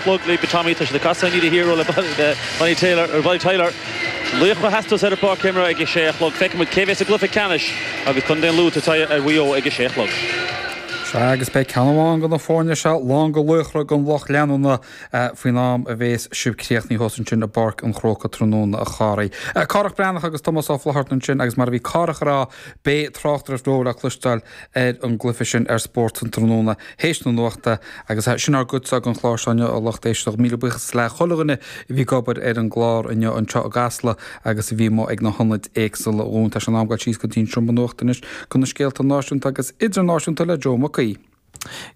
Clog le Tommy, tá siad ag casadh an fhíle hero le Bonnie Tyler, ar Bonnie Tyler. Laoch a theastóidh ar an bpáirc céim reidh ag a sé a chlog. Feicfidh muid cé a bhéas i gcluiche ceannais agus contae an Lú ag tabhairt aghaidh ar Mhaigh Eo ag a sé a chlog. Sea, agus beidh ceann amháin de na foirne seo lán de laochra don lucht leanúna faoin am a bhéas sibh críochnaithe thuas ansin i bPáirc an Chrócaigh tráthnóna a Chárthaigh. Cárthach Breathnach agus Tomás Ó Flatharta ansin agus mar a bhí Cárthach a rá, beidh tráchtaireacht bheo le cloisteáil, ar an gcluiche sin ar Spórt an Tráthnóna théis na Nuachta agus sin ár gcuidse den chlár seo inniu a lucht éisteachta. Míle buíochas le chuile dhuine a bhí ag obair ar an gclár inniu anseo i gCasla agus a bhí amuigh ag na hionaid éagsula dhúinn. Tá sé in am goil síos go dtí an seomra nuachta anois chuig na scéalta náisiúnta agus idirnáisiúnta le Joe Mac Aoidh.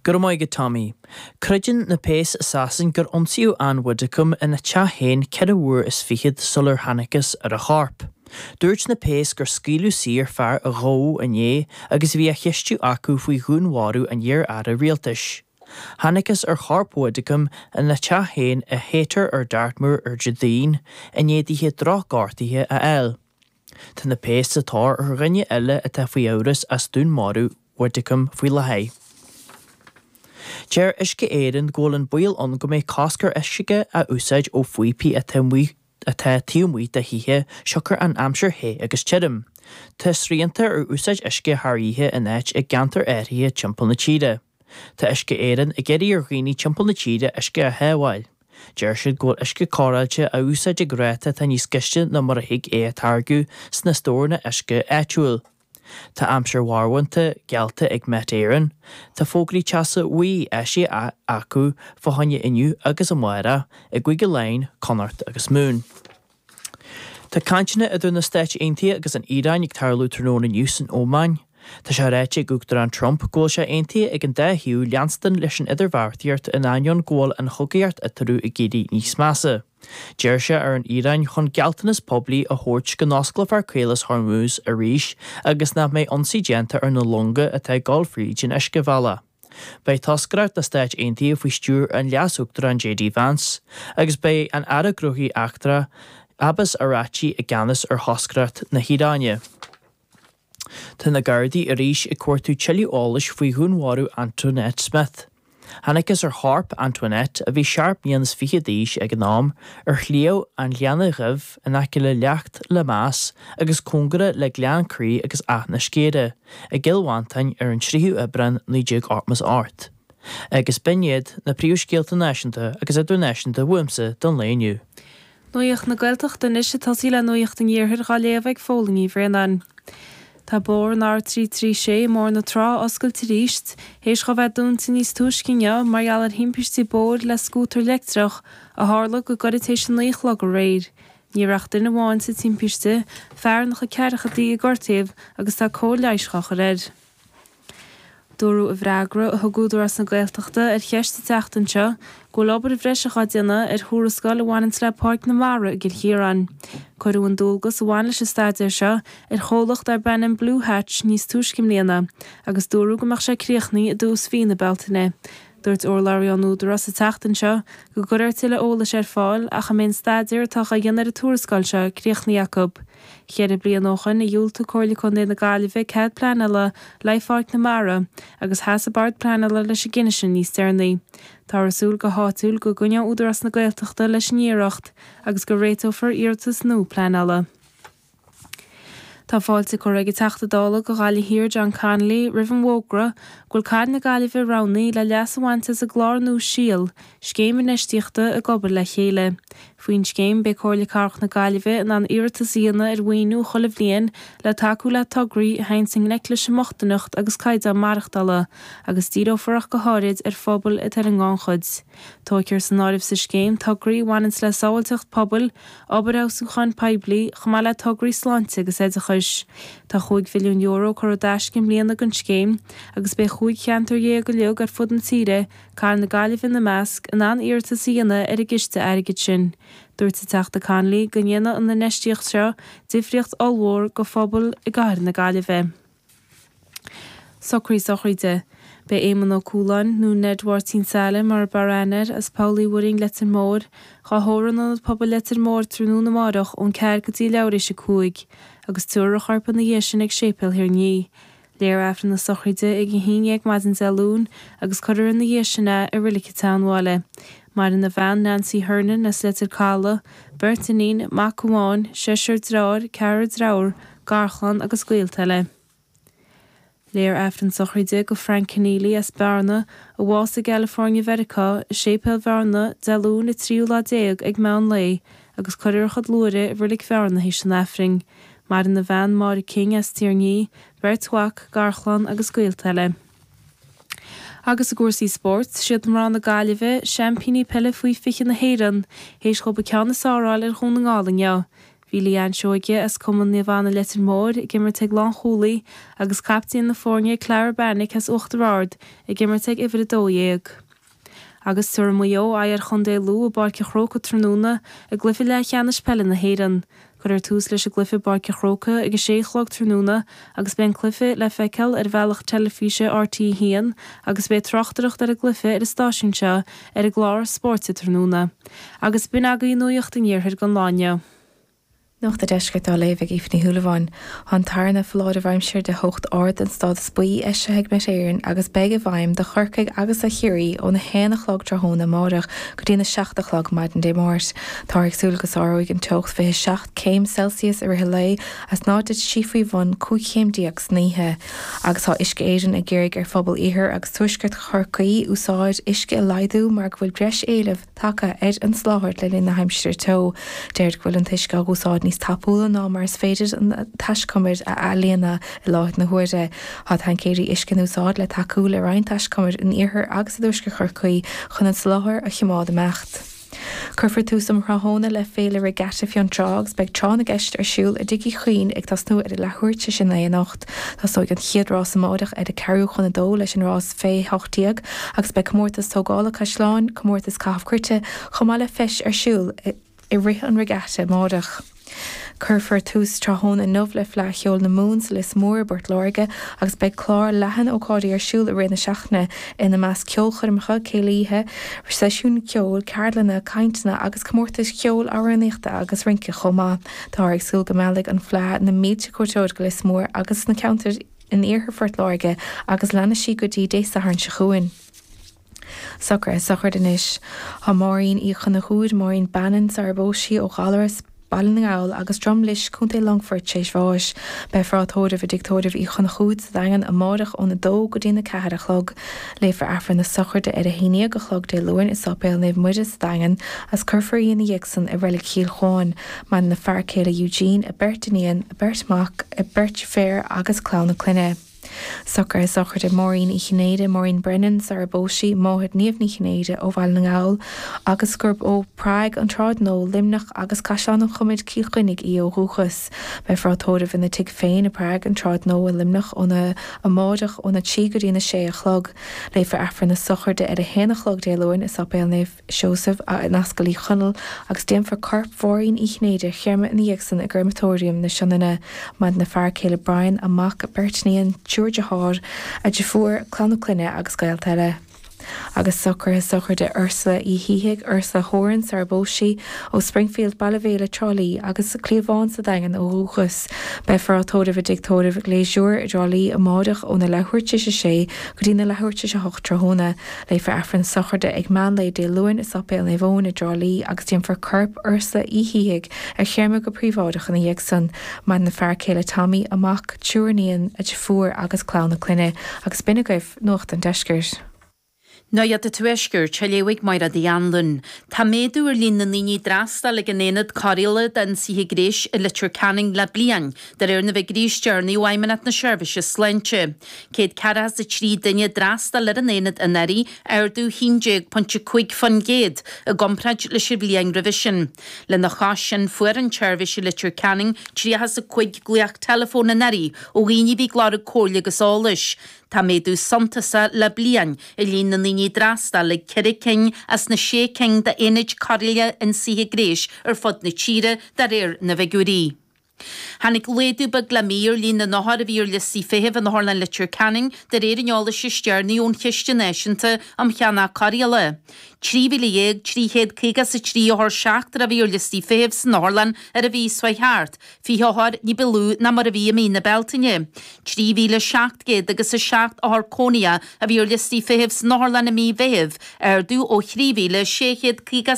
Go raibh maith agat Tommy. Creideann na péas i Sasain gur ionsaíodh Ann Widdecombe ina teach féin ceithre uair is fichead sular thángthas ar a chorp. Dúirt na péas gur scaoileadh saor fear a gabhadh inné agus a bhí á cheistiú acu faoi dhúnmharú an iar-aire rialtais. Thángthas ar chorp Widdecombe ina teach féin i Haytor ar Dartmoor ar Déardaoin i ndiaidh dithe drochghortuithe a fháil. Tá na péas sa tóir ar dhuine eile atá faoi amhras as dúnmharú Widdecombe faoi láthair. Deir Uisce Éireann go bhfuil an baol ann go mbeidh cosc ar uisce a úsáid ó phíopaí atá amuigh atá taobh amuigh de thithe siocair an aimsir the agus tirim. Tá srianta ar úsáid uisce thar oíche in áit i gceantair áirithe timpeall na tíre. Tá Uisce Éireann ag iarraidh ar dhaoine timpeall na tíre uisce a shábháil. Deir siad go bhfuil uisce cóireáilte á úsáid ag ráta atá níos gaiste ná mar a thig é a táirgeadh sna stóranna uisce áitiúil. Tá aimsir mharbhánta geallta ag Met Éireann. Tá fógraí teasa bhuí eisithe acu fá choinne inniu agus amárach i gCúige Laighean, Connacht agus Mumhan. Tá cainteanna idir na Stáit Aontaithe agus an Iaráin ag tarlú tráthnóna inniu san Óman. Tá sé ráite ag Uachtarán Trump go bhfuil sé aontaithe ag an dá thaobh leanstan leis an idirbheartaíocht in ainneoin go bhfuil an chogaíocht eatarthu ag éirí níos measa. D'iarr sé ar an Iaráin chun gealltanas poiblí a thabhairt go n-osclófar Caolas Hormuz arís agus nach mbeidh ionsaí déanta ar na longa atá ag dul fríd an uiscebhealach. Beidh toscaireacht na Stáit Aontaithe faoi stiúir an Leas-Uachtaráin JD Vance agus beidh an Aire Gnóthaí Eachtra, Abbas Araghchi i gceannas ar thoscaireacht na hIaráine. Tá na Gardaí arís ag cuartú tuilleadh eolais faoi dhúnmharú Antoinette Smith. Thángthas ar chorp Antoinette, a bhí seacht mbliana is fiche d'aois ag an am, ar Shliabh an Ghleanna Dhuibh in aice le Leacht Lemass agus cóngarach le Gleann Crí agus Áth na Sceire i gCill Mhantáin ar an 3ú Aibreán 1988. Agus b'in iad na príomhscéalta náisiúnta agus idirnáisiúnta uaimse don lae inniu. Nuacht na Gaeltachta Anois ag tosaí le Nuacht an Iarthair dhá léamh ag Phóilín Ní Bhraonáin. Tá bóthar an R336 i mBóthar na Trá oscailte arís, théis dhó bheith dúnta níos túisce inniu mar gheall ar thimpiste bóthair le scútar leictreach a tharla go gairid théis a naoi a chlog aréir. Ní raibh ach duine amháin sa timpiste, fear ina chuid ceathrachaidí a gortaíodh agus tá cóir leighis dhá chur air. Dúradh i bhfreagra a thug Údarás na Gaeltachta ar cheist sa tseachtain seo go bhfuil obair bhreise dhá déanamh ar thuarascáil a bhaineanns le Páirc na Mara i gCill Chiaráin. Cuireadh an dualgas a bhain leis an staidéar seo ar chomhlacht darb ainm Blue Hatch níos túisce i mbliana agus dúradh go mbeadh sé críochnaí i dtús mhí na Bealtaine. Dúirt urlabhraí ón Údarás an tseachtain seo go gcuirfear tuilleadh eolais ar fáil ach a mbeidh an staidéar atá dhá dhéanamh ar an tuarascáil seo críochnaí acu. Ceithre bliana ó shoin a dhiúltaigh Comhairle Contae na Gaillimhe cead pleanála l'aghaidh Pháirc na Mara, agus sheas an Bord Pleanála leis an gcinneadh sin níos deireanaí. Táthar ag súil go h-áitiúil go gcoinneoidh Údarás na Gaeltachta leis an iarracht, agus go réiteofar iarratas nua pleanála. Tá fáilte curtha ag an Teachta Dála do Ghaillimh Thiar, John Connolly, roimh an bhfógra go bhfuil Cathair na Gaillimhe roghnaithe le leas a bhaint as an gclár nua 'Síol Scéim Infheistíochta ag obair le chéile. Faoin scéim, beidh Comhairle Cathrach na Gaillimhe in ann iarratas a dhéanamh ar mhaoiniú chuile bhliain le tacú le tograí a théanns i ngleic leis an mbochtaineacht agus caighdeán maireachtála, agus díreofar ach go háirid ar phobail atá ar an ngannchuid. Tógfar san áireamh sa scéim tograí a bhaineanns le sábháilteacht pobail, obair fheabhsúcháin poiblí, chomh maith le tograí sláinte agus oideachais. Tá €5 mhilliún curtha i dtaisce i mbliana don scéim, agus beidh chúig cheantar dhéag uilig ar fud na tíre, Cathair na Gaillimhe ina measc, in ann iarratas a dhéanamh ar an gciste airgid sin. Dúirt an Teachta Connolly go ndéanfadh an infheistíocht seo difríocht ollmhór do phobail i gCathair na Gaillimhe. Socraí sochraide. Beidh Éamon Ó Cualáin, nó Ned Mháirtín Seale mar ab fhearr aithne air, as Poll Uí Mhuirinn, Leitir Móir, dhá thórramh in Ionad Pobail Leitir Móir tráthnóna amárach ón ceathair go dtí leathuair théis a cúig, agus tiúrfar a chorp ina dhiaidh sin ag Séipéal Thír an Fhia. Léifear Aifreann na sochraide ag a haon dhéag maidin Dé Luain agus cuirfear ina dhiaidh sin é i Reilig a' tSeanbhaile. Maireann a bhean, Nancy Hernon, as Leitir Caladh, beirt iníon, mac amháin, seisear dreáir, ceathrar dreabhar, garchlann agus gaolta eile. Léifear Aifreann sochraide do Frank Conneely as Bearna, a bhásaigh i gCalifoirnea Mheiriceá, i Séipéal Bhearna, Dé Luain an tríú lá déag ag meán lae. agus cuirfear a chuid luaithre i Reilig Bhearna théis an Aifrinn. Maireann a bhean Máire King as Tír an Fhia, beirt mhac, garchlann agus gaolta eile. Agus i gcúrsaí spóirt, siad mná na Gaillimhe, seaimpíní peile faoi 20 na hÉireann, théis dhóibh an ceann is fearr a fháil ar Dhún na nGall inniu. Bhí Leanne Seoige, as Cumann Naomh Anna Leitir Móir, ag imirt ag lánchúlaí, agus caiptín na foirne Clara Beanick as Uachtar Ard, ag imirt ag uimhir a dó dhéag. Agus tabharfaidh Maigh Eo aghaidh ar Chontae Lú i bPáirc a' Chrócaigh tráthnóna i gcluiche leathcheannais peile na hÉireann, cuirfear tús leis an gcluiche i bPáirc a' Chrócaigh ag a sé a chlog tráthnóna agus beidh an cluiche le feiceáil ar bhealach teilifíse rte 1 agus beidh tráchtaireacht ar an gcluiche ar an stáisiún seo ar an gclár Spórt an Tráthnóna. Agus b'in agaí nuaíocht an iarthair don lá inniu. Nuacht an Deiscirt á léamh ag Aoife Ní Shúilleabháin. Tá an tarna foláireamh aimsire de theocht ard den stádas buí eisithe ag Met Éireann agus a bheidh i bhfeidhm do Chorcaigh agus do Chiarraí ón 1 a chlog tráthnóna amáireach go dtí an 7 a chlog maidin Dé Máirt. Táthar ag súil go sáróidh an teocht 27 céim Celsius i rith an lae is ná titfidh sí faoi bhun 15 chéim san oíche agus tá Uisce Éireann ag iarraidh ar phobail iarthar agus tuaisceart Chorcaí úsáid uisce a laghdú mar go bhfuil breis éilimh tagtha ar an soláthar le linn na haimsire teo. Deirid go bhfuil an t-uisce á úsáid níos tapúla ná mar is féidir na taiscumair a athlíonadh i láthair na huaire. Tá taincéirí uisce in úsáid le tacú le roinnt taiscumair in iarthar agus i dtuaisceart Chorcaí chun an soláthar a choimeád ag imeacht. Cuirfear tús um thráthnóna le Féile Regatta Fionntrá agus beidh tráth na gceist ar siúl i dTigh Uí Chuinn ag tosnú ar a leathuair tar éis a naoi anocht. Tosnóidh an chéad rás amáireach ar cheathrú chun a dó leis an rás fé 18 agus beidh comórtas tógála caisleáin, comórtas caitheamh cruite chomh maith le feis ar siúl i rith an regatta amáireach. Cuirfear tús tráthnóna inniu le Fleadh Cheoil na Mumhan sa Lios Mór i bPort Láirge agus beidh clár leathan ócáidí ar siúl i rith na seachtaine, ina measc ceolchoirmeacha, céilíthe, seisiúin cheoil, ceardlanna, cainteanna agus comórtais cheoil, amhránaíochta agus rince chomh maith. Táthar ag súil go meallfaidh an fleadh na mílte cuairteoir go Lios Mór agus an ceantar in iarthar Phort Láirge agus leanfaidh sí go dtí Dé Sathairn seo chugainn. Socruithe sochraide anois. Tá Maureen Uí Chonchúir, Maureen Bannon, sarar phós sí, ó Ghallarus, Baile na nGall, agus Drom Lis, Co. Longfoirt, tar éis bháis. Beifear á tórramh i dTigh Tórraimh Uí Chonchúir sa Daingean amárach óna dó go dtína ceathair a chlog. Léifear Aifreann na sochraide ar a haon dhéag a chlog Dé Luain i Sáipéal Naomh Muire sa Daingean agus cuirfear í ina dhiaidh san i Reilig Chill Chuáin. Maireann a fear céile Eugene, a beirt iníon, a beirt mhac, a beirt deirféar agus clann a clainne. Socruithe sochraide Maureen Uí Chinnéide, Maureen Brennan, sarar phós sí máthair Niamh Ní Chinnéide ó Bhaile na nGall agus gurb ó Prague, an tSráid Nua, Luimneach agus Caisleán an Chomair, Cill Chainnigh í ó dhúchas. Beifear á tórramh ina tigh féin i bPrague an tSráid Nua i Luimneach óna amáireach óna trí go dtína sé a chlog. Léifear Aifreann na sochraide ar a haon a chlog Dé Luain i Sáipéal Naomh Seosamh in Ascaill Uí Chonaill agus déanfar corp Maureen Uí Chinnéide a chréamadh ina dhiaidh san i gCréamatóiriam na Sionainne. Maireann a fear céile Brian, a mac, a beirt iníon, triúr dearthár, a deirfiúr, clann a clainne agus gaolta eile. agus socruithe sochraide Ursula Uí Shíthigh, Ursula Horan, sara bpós sí, ó Springfield, Baile Mhéile, Trá Lí, agus Cliabhán sa Daingean ó dhúchas. Beifear á tórramh i dTigh Tórraimh Gleasure i dTrá Lí amáireach óna leathuair tar éis a sé go dtí na leathuair tar éis a hocht tráthnóna. Léifear Aifreann sochraide ag meánlae Dé Luain i Sáipéal Naomh Eoin i dTrá Lí agus déanfar corp Ursula Uí Shíthigh a chréamadh go príobháideach ina dhiaidh san. Maireann a fear céile Tommy, a mac, triúr iníon, a deirfiúr agus clann a clainne, agus b'in agaibh Nuacht an Deiscirt. Nuacht an Tuaiscirt, a léifidh Máire Ní Anluain. Tá méadú ar líon na ndaoine a d'fhreastail ag an Aonad Cóireála d'Ionsaithe Gnéis i Leitir Ceanainn le bliain, de réir na bhfigiúirí is deireanaí ó Fheidhmeannacht na Seirbhíse Sláinte. Céad ceathracha is a trí duine a d'fhreastail ar an Aonad anuraidh, ardú 11.5% i gcomparáid leis an bhliain roimhe sin. Lena chois sin, fuair an tseirbhís i Leitir Ceanainn tríocha is a cúig glaoch teileafóin anuraidh ó dhaoine a bhí ag lorg comhairle agus eolais. Tá méadú suntasach le bliain i líon na ndaoine a d'fhreastail ag ceithre cinn as na sé cinn d'aonaid cóireála ionsaithe gnéis ar fud na tíre, de réir na bhfigiúirí. Tháinig laghdú beag le mí ar líon na n-othar a bhí ar liostaí feithimh in Otharlann Leitir Ceanainn, de réir an eolais is deireanaí ón Chiste Náisiúnta um Cheannach Cóireála. 13,353 othar seachtrach a bhí ar liostaí feithimh san otharlann ar an mhí seo chuaigh thart 20 othar, ní ba lú ná mar a bhí i mí na Bealtaine. 3,700 agus 7 othar cónaitheach a bhí ar liostaí feithimh san otharlann i mí an Mheithimh, ardú ó thrí mhíle sé chéad caoga